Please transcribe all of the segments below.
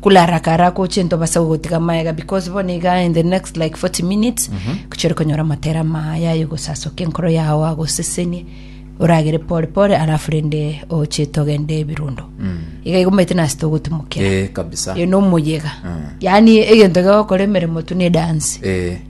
Kularakara gocha into base gogotiga amaega because bono iga in the next like 40 minutes gochia ore konyora amatere amaya aye gosasokia enkoro yao agosesenie oragere pore pore alafu rende ochete ogende ebirundo iga igo omanyete nase togotimokera Eh, kabisa. eno omoyega yani egento gogokora emeremo tu ne dance Eh,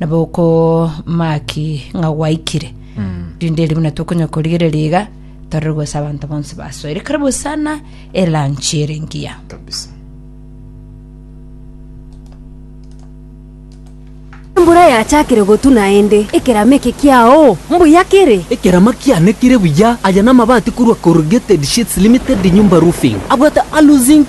nabo okomaki ng'a gwaikire rinde erio buna tokonya korigereria iga torore gose abanto bonsi basoire karibu sana elanchi ere ngiya kabisa Embura yachakire gotu naende, ekerama eke kiao mbuya kere. Ekerama kiane kire buya. Aya namabati korwa Corrugated Sheets Limited Nyumba Roofing. Abwate Alu-zinc